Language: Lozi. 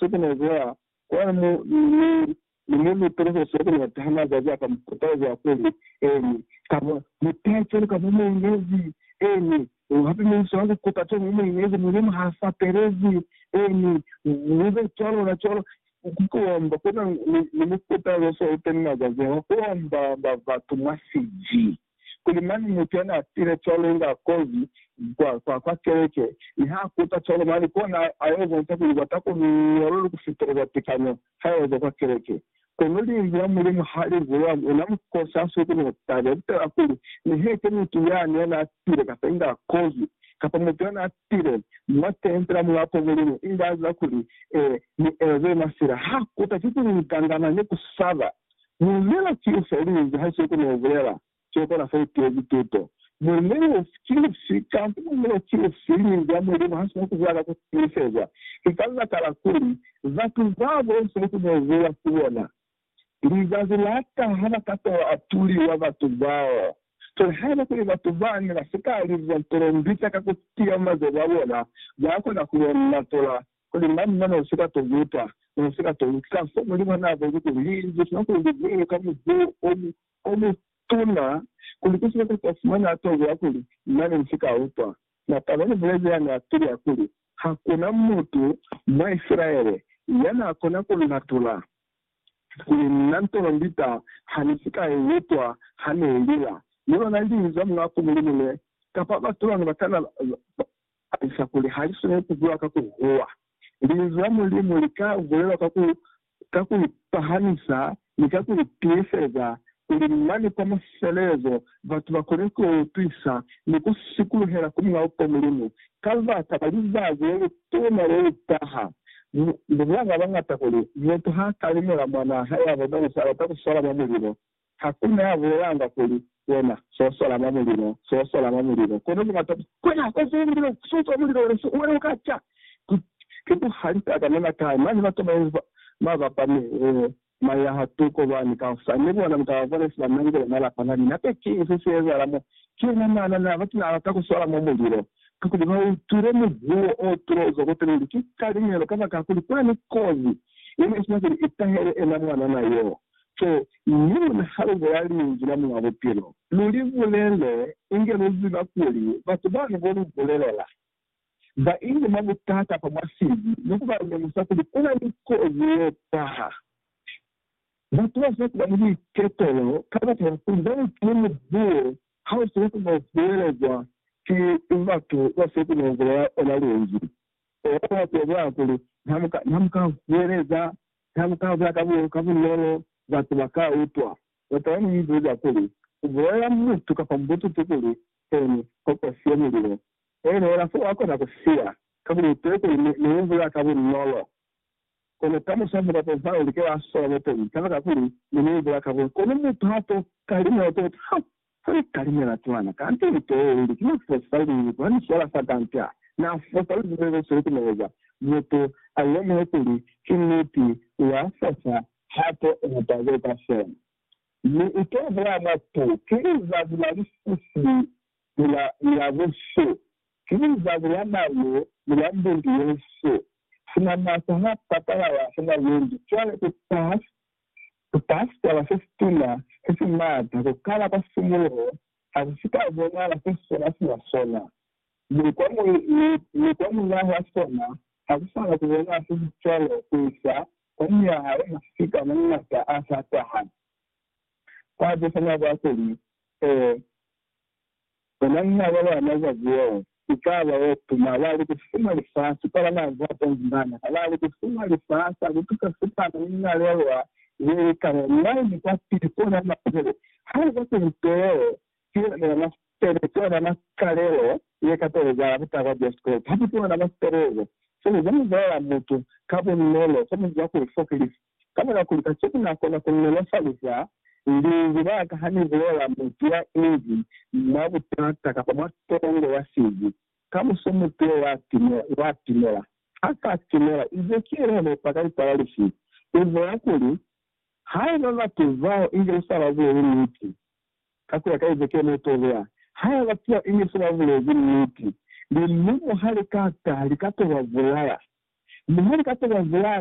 Sekenezea kwa mu mi ni mu lute ni Hosi ya ku neta ha mazazi a ka mu kutaeza kuli, Eni, kaba mu tece ni kaba mu inezi, eni, hape mi inso ya ku kuta co mu mu inezi, Mulimu ha sa pelezi, eni, mu be cwalo na cwalo. Ku kuomba ku na ni mukutazo so uteni mazazi a, ku omba ba batu mwa siji. kuli mane mutu ya n'a pile cwalo nga kozi kwa, kwa keleke, mi h'a kuta cwalo mane, kona a yo bonca kuli kwa ta konoha ku feteleza tekanyo ha ya zwa kwa keleke. Kono Linzwi la Mulimu ha li bulela mwa ona mukosi ha si kono taba ye kutala kuli ne he ki mutu yani ya n'a pile kapa inga kozi, kapa mutu ya n'a pile mwa tempe la Mulapo Mulimu inga a ziba kuli ee, mi ezwe mwa sila. H'a kuta ki ku ngangana ni ku saba. Muinelo ki ufi aliinzi ha siyo kona ubulela siyo kona fa itiezi tuto? Muinelo ufi ki ufi kamba muinelo ki ufi liinzi la Mulimu ha sina kubulela ka kutiiseza? Ki ka libaka la kuli batu babo siyo kona ubulela ku bona. Lizazi la taha ba ka tola atuliwa batu bao. Cwale haiba kuli batu bane ba si ka liza tolombita ka kutiya mazelu a bona, ba kona ku bona tola Kuli mañi mo ne si ka to luta, mo ne si ka to utla fo Mulimu naa boni kuli Linzwi sina ku li bulela ka muzuho o mutuna, kuli ki sina kapa fumani a to bula kuli, Na ne ni si ka utwa. Mataba ni bulezi ya ne a tulia kuli, Ha ku na mutu mwa Isilaele ya naa kona ku nlatula, kuli na ntono ndita ha ni si ka i utwa ha ne i lila, ni lona Linzwi la Mulaa ku Mulimu ne, kapa batu bani ba ka na Alisa kuli, Ha li swaneli ku bulewa ka ku huwa. Linzwi la Mulimu li ka bulelwa ka ku, ka ku ipahamisa ni ka ku itiiseza, kuli mane kwa mafelelezo batu ba kone ku yo utwisa ni ku sikuluhela ku Mulao kwa Mulimu ka baka la lizazi le lituna le li taha. Mu, mu bulanga bañata kuli, Mutu ha ka limela mwanaa hae ya bona, u si alata ku swala mwa mulilo. Hakuna ya bulelanga kuli, Wena, so sola mwa mulilo, so sola mwa mulilo, kono ki mata fela. Wena, so sola mulilo, so sola mulilo, wena, so, wena uka ca. Ki, ki buhali fela ka nena kai. Mane ba toma inzi ba, ba bapa mi, eh, mwa ya ha tuko lwani ka hosani, ni bona muka ba bona se ba nangile mwa lapa lani. Hape ki ifi se ezahala mo? Ki yona mana na bati na lata ku sola mwa mulilo, kakuli ba utwile mubuo o tulo uzwa kwa Pele, uli ki kaliñelo, kabakakuli kwani kozi ye ne isina kuli i tahele ena mwanana yo. to ni luna ha lu bula Linzwi la Muñ'a Bupilo, lu li bulele inge lu ziba kuli batu bano bo lu bulelela ba inge mwa butata fa mwa sili ni ku ba lemusa kuli ku na ni kozi ye taha. Batu ba sina ku ba ni buiketelo kabata ya kuli ba utile mubuo ha u sina ku no bulelezwa ki batu ba si ku no bulela ona Linzwi. Eya, Bibele ya bulelakuli, Ha mu ka huweleza Ha mu ka za ka bunolo, batu ba ka utwa. Lutwa lwa mu ibuza kuli, U bulelela mutu kapa mubututu kuli, Keni, ko ku siye mulilo? Eneela fo wa kona ku siya, kakuli u tee kuli ne u bula ka bunolo. Kono ka muswaso kwa Jehova u like wa sola lutwa li, kabakakuli ne ni bula ka bunolo. Kono mutu ha to kali, ne u to utwa, Ha! Ha ni talimela cwana, kanta ni teeleli, ki na fosa luli. Ku ni swala fa kanta, na fosa luli mwa ze sulukumeza. Mutu a lemuhe kuli ki niti, u ya fosa hape u mu taze ka sona. Mi u to bulela mwa tu, Ki lizazi la lisisi ni la, ni la busu. Ki lizazi la malu ni la mbundu ye nsu. Sina masa ha patalala, sina lundu. Cwale ku taha Bupasitola se situna se si maata ku kala kwa simuluho ha si si ka bonahala se sona sina sona, mi kwa muli, mi, mi kwa mulaha sona ha ku sa na ku bonahala se si cwalo ku isa kwa myaha ye mafita mwa mangata a sa taha. Kwa buzwa mwa kwa kuli, Ee, Ona nha ba ba na za buo, ki ka ba o tuma, ba li ku fuma lifasi kwa ba na za tenzi bana, ha ba li ku fuma lifasi a ku tusa sipana ni linalelwa ze li ka ba mwai ni kwa pili ku ona mapele, ha li kwa tenzi too, ki ona ba na sipele, ki ona makalelo ye ka to ezahala ku taha kwa Jesu Kreste. Hape ki ona masipelezo, se li za muzwale la mutu, ka bunolo, se mu za ku li fokelisa. Ka mora kuli kacenu na kona ku nolofaliza linzwi la ka ha ni bulela mutu ya inzi mwa butata kapa mwa tongo ya sibi, kamuso mutu yo wa timela. Ha sa timela, inz'e ki yena ne pa ka ikwala lifi? U bola kuli, Haiba batu bao inge ni sa ba buleli niti, ka ku ya ka Ezekiele mo to beya, haiba batu bao inge ni sa ba bulezi niti, lilumo ha li ka taha li ka to ba bulaya. Mi ha li ka to ba bulaya,